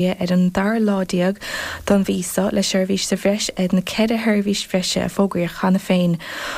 ar an dara lá déag den mí seo, le seirbhís sa bhreis ar na ceithre sheirbhís bhreise a fógraíodh cheana féin.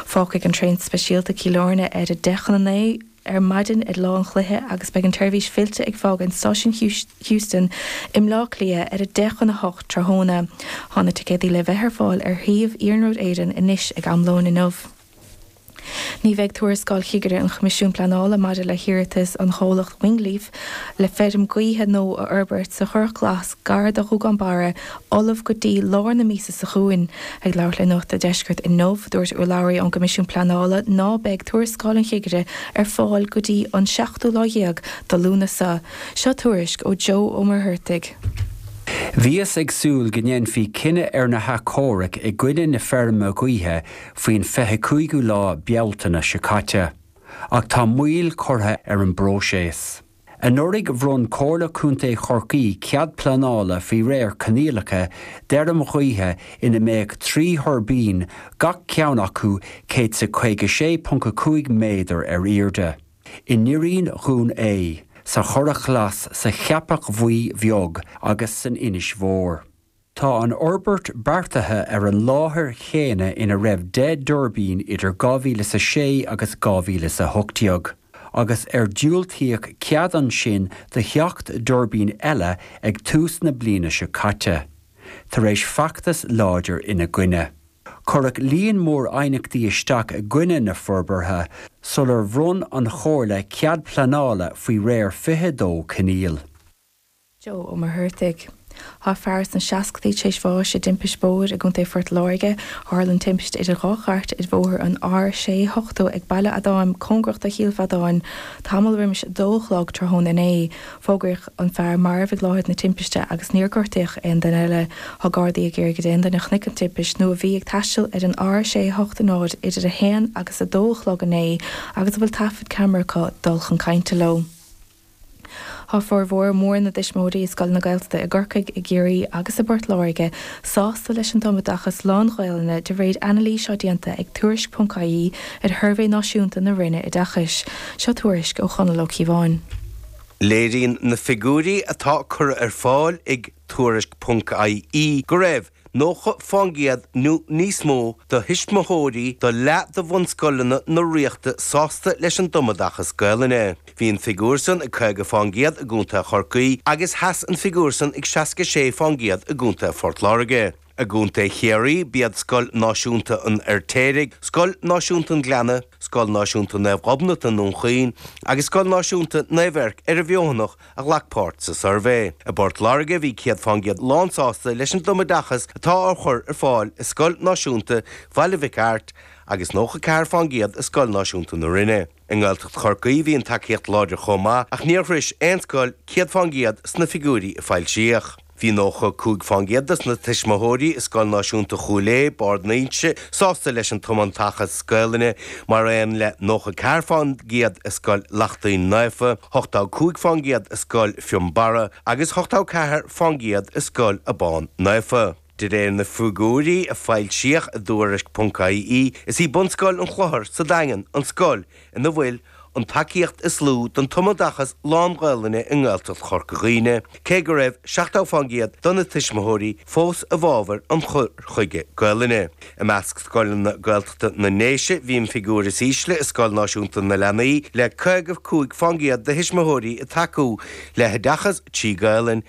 Fágfaidh an traein speisialta Cill Airne ar a deich chun a naoi ar maidin ar lá an chluiche agus beidh an tseirbhís fillte ag fágáint Stáisiún Heuston i mBleá Cliath ar a deich chun a hocht tráthnóna. Tá na ticéadaí le bheith ar fáil ar shuíomh Iarnród Éireann anois ag am lóin inniu. Ní bheidh tuarascáil chigire an Choimisiúin Pleanála maidir le hiarratas an chomhlacht Wingleaf le feirm ghaoithe nua a fhorbairt sa Churrach Glas gar do Ghuagán Barra ullamh go dtí lár na míosa seo chugainn. Ag labhairt le Nuacht a' Deiscirt inniu, dúirt urlabhraí ón gCoimisiún Pleanála ná beidh tuarascáil an chigire ar fáil go dtí an seachtú lá dhéag de Lúnasa. Seo tuairisc ó Joe Ó Muircheartaigh. Bhíothas ag súil go ndéanfaí cinneadh ar na hathchomhairc i gcoinne na feirme gaoithe faoin 25ú lá Bealtaine seo caite, ach tá moill curtha ar an bpróiseas. Anuraidh bhronn Comhairle Contae Chorcaí cead pleanála faoi réir coinníollacha d'fheirm ghaoithe ina mbeadh trí thuirbín, gach ceann acu céad is a 56.5 méadar ar airde, i nDoirín Dhún Ae, sa Churrach Ghlas, sa Cheapach Bhuí Bheag agus san Inse Mhór. Tá an fhorbairt beartaithe ar an láthair chéanna ina raibh deich dtuirbín idir 2000 is a sé agus 2000 is a hocht déag, agus ar diúltaíodh cead ansin do sheacht dtuirbín eile ag tús na bliana seo caite, tar éis feachtas láidir ina gcoinne. Cuireadh líon mór aighneachtaí isteach i gcoinne na forbartha sular bhronn an Chomhairle cead pleanála faoi réir 22 coinníoll. Joe Ó Muircheartaigh. Tá fear sna seascadaí tar éis bháis i dtimpist bóthair i gContae Phort Láirge. Tharla an timpiste idir dhá chairt ar bhóthar an R680 ag Baile Adáim cóngarach do Chill Mhíodáin tamall roimis a dó a chlog tráthnóna inné. Fógraíodh an fear marbh ag láthair na timpiste agus níor gortaíodh aon duine eile. Tá Gardaí ag iarraidh d'aon duine a chonaic an timpist nó a bhí ag taisteal ar an R680 idir a haon agus a dó a chlog inné agus a bhfuil taifead ceamara acu dul chun cainte leo. Tá formhór mór na dtuismitheoirí i scoileanna Gaeltachta i gCorcaigh, i gCiarraí agus i bPort Láirge sásta leis an tumoideachas lán-Ghaelainne de réir anailís atá déanta ag Tuairisc.ie ar shuirbhé náisiúnta na Roinne Oideachais. Seo tuairisc ó Chonall Ó Cíobháin. Léiríonn na figiúirí atá curtha ar fáil ag Tuairisc.ie go raibh. 90 fán gcéad nó níos mó de thuismitheoirí do leath de bhunscoileanna na Ríochta sásta leis an dtumoideachas Gaelainne. Bhí an figiúr san ag 50 fán gcéad i gContae Chorcaí agus sheas an figiúr san ag 66 fán gcéad i gContae Phort Láirge. I gContae Chiarraí, b'iad Scoil Náisiúnta an Fheirtéaraigh, Scoil Náisiúnta an Ghleanna, Scoil Náisiúnta Naomh Gobnait i, Dún Chaoin, agus Scoil Náisiúnta Naomh Eirc ar an bhFeothanach a ghlac páirt sa suirbhé. I bPort Láirge, bhí 100 faoin gcéad lánsásta leis an tumoideachas atá á chur ar fáil i Scoil Náisiúnta Bhaile Mhic Airt agus 94 faoin gcéad i Scoil Náisiúnta na Rinne. I nGaeltacht Chorcaí, bhí an tacaíocht láidir chomh maith ach níor shrois aon scoil 100 faoin gcéad sna figiúirí a foilsíodh. Bhí 95 faoin gcéad des na tuismitheoirí i Scoil Náisiúnta Chúil Aodha, Barr d'Ínse, sásta leis an tumoideachas Gaelainne, mar aon le 94 faoin gcéad i Scoil Lachtaín Naofa, 85 faoin gcéad i Scoil Fionnbarra agus 84 faoin gcéad i Scoil Abán Naofa. De réir na figiúirí a foilsíodh i dTuairisc.ie, is í Bunscoil an Chlochair sa Daingean an scoil ina bhfuil an tacaíocht is lú don tumoideachas lán-Ghaelainne i nGaeltacht Chorca Dhuibhne, cé go raibh 70% de na tuismitheoirí fós i bhfabhar an chur chuige Gaelainne. I measc scoileanna Gaeltachta na nDéise, bhí an figiúr is ísle i Scoil Náisiúnta na Leanaí, le 55% de thuismitheoirí ag tacú le hoideachas trí Gaelainn,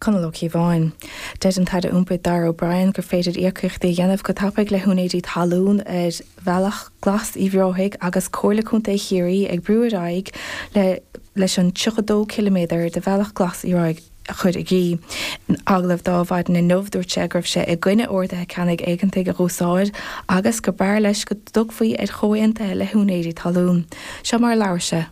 Conall Ó Cíobháin. Deir an tAire Iompair Darragh O'Brien gur féidir íocaíochtaí a dhéanamh go tapaidh le húinéirí talún ar Bhealach Glas Uíbh Ráthaigh agus Comhairle Contae Chiarraí ag brú ar aghaidh leis an 32 ciliméadar de Bhealach Glas Uíbh Ráthaigh a chur i gcrích. In agallamh dó mhaidin inniu dúirt sé go raibh sé i gcoinne orduithe ceannaigh éigeantaigh a dh'úsáid agus gur b'fhearr leis go dtiocfaí ar chomhaontuithe le húinéirí talún. Seo mar a labhair sé.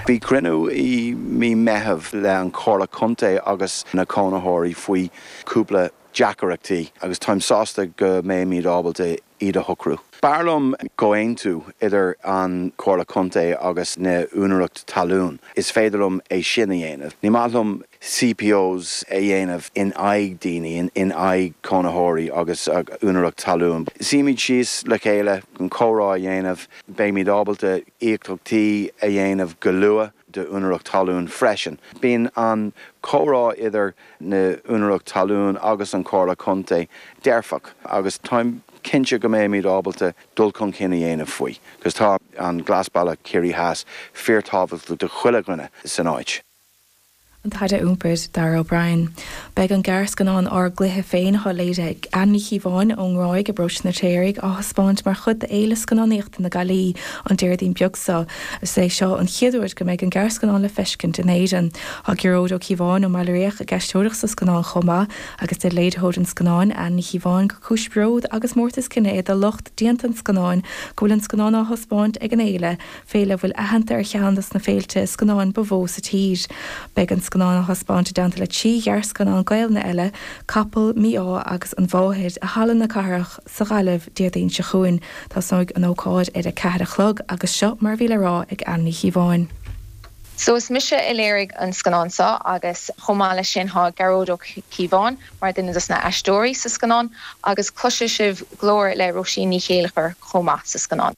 Bhí cruinniú i mí Meithimh le an Chomhairle Contae agus na cónaitheoirí faoi chúpla deacaireachtaí agus táim sásta go mbeimid ábalta iad a shocrú. B'fhearr liom comhaontú idir an Chomhairle Contae agus na úinéireacht talún, is féidir liom é sin a dhéanamh. Ní maith liom CPOs a dhéanamh in aghaidh daoine, in aghaidh cónaitheoirí agus úinéireacht talún. Suímid síos le chéile chun comhrá a dhéanamh. Beimid ábalta íocaíochtaí a dhéanamh go luath d'úinéireacht talún freisin. Bíonn an comhrá idir na úinéireacht talún agus an Chomhairle Contae dearfach agus táim cinnte go mbeimid ábalta dul chun cinn a dhéanamh faoi, cos tá an Glasbhealach Chiarraí Theas fíorthábhachtach do chuile dhuine san áit. An tAire Iompair, Darragh O'Brien. Beidh an gearrscannán Ár gCluiche Féin atá léirithe ag Ann Ní Chíobháin ón nGráig i bParóiste an Fheirtéaraigh á thaispeáint mar chuid d'Fhéile Scannánaíochta na Gaillí an Déardaoin beag seo. Is é seo an chéad uair go mbeidh an gearrscannán le feiscint in Éirinn. Tá Gearóid Ó Cíobháin ón mBaile Riach ag aisteoireacht sa scannán chomh maith agus deir léiritheoir an scannáin, Ann Ní Chíobháin, gur cúis bród agus mórtas cine é do lucht déanta an scannáin go bhfuil an scannán á thaispeáint ag an fhéile. féile a bhfuil aitheanta ar cheann dos na féilte scannáin ba mhó sa tír. Beidh an scannán á thaispeáint i dteannta le trí ghearrscannán Gaelainne eile, Capall, Mí-Ádh agus An Mháthair, i Halla na Cathrach sa Ghaillimh Déardaoin seo chugainn. Tosnóidh an ócáid ar a ceathair a chlog agus seo mar a bhí le rá ag Anne Ní Chíobháin. So is mise a léirigh an scannán seo agus chomh maith leis sin tá Gearóid Ó Cíobháin mar duine dos na aisteoirí sa scannán agus cloisfidh sibh glór le Róisín Ní Chéilleachair chomh maith sa scannán.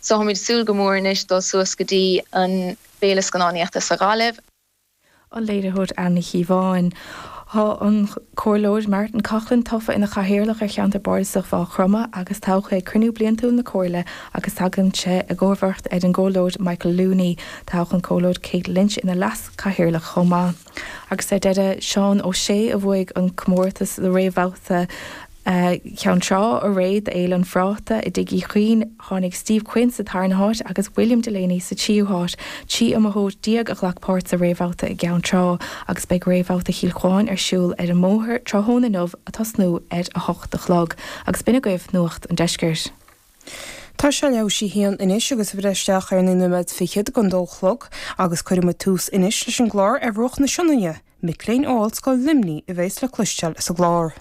So táimid ag súil go mór anois le dul suas go dtí an Féile Scannánaíochta sa Ghaillimh. an léiritheoir Anne Ní Chíobháin. Tá an Comhairleoir Martin Coughlan tofa ina Chathaoirleach ar Cheantar Bardasach Mhaigh Chromtha agus toghadh é ag cruinniú bliantúil na Comhairle agus tagann sé i gcomharbacht ar an gComhairleoir Michael Looney. Toghadh an Comhairleoir Kate Lynch ina Leas-Chathaoirleach chomh maith. Agus ar deireadh, Seán Ó Sé a bhuaigh an comórtas sa réamhbhabhta Ceann Trá arae do Fhéile an Phráta i dTigh Uí Chuinn. Tháinig Steve Quinn sa tarna háit agus William Delaney sa tríú háit. Trí iomaitheoir déag a ghlac páirt sa réamhbhabhta i gCeann Trá agus beidh réamhbhabhta Chill Chuáin ar siúl ar an mBóthar tráthnóna inniu ag tosnú ar a hocht a chlog. Agus b'in agaibh Nuacht an Deiscirt. Tá sé leath i ndiaidh a haon anois agus ag breith isteach ar naoi nóiméad fichead don dó a chlog agus cuirfidh muid tús anois leis an gclár ar bhruach na Sionainne, mic léinn ó Ollscoil Luimní a bhéas le cloisteáil sa gclár.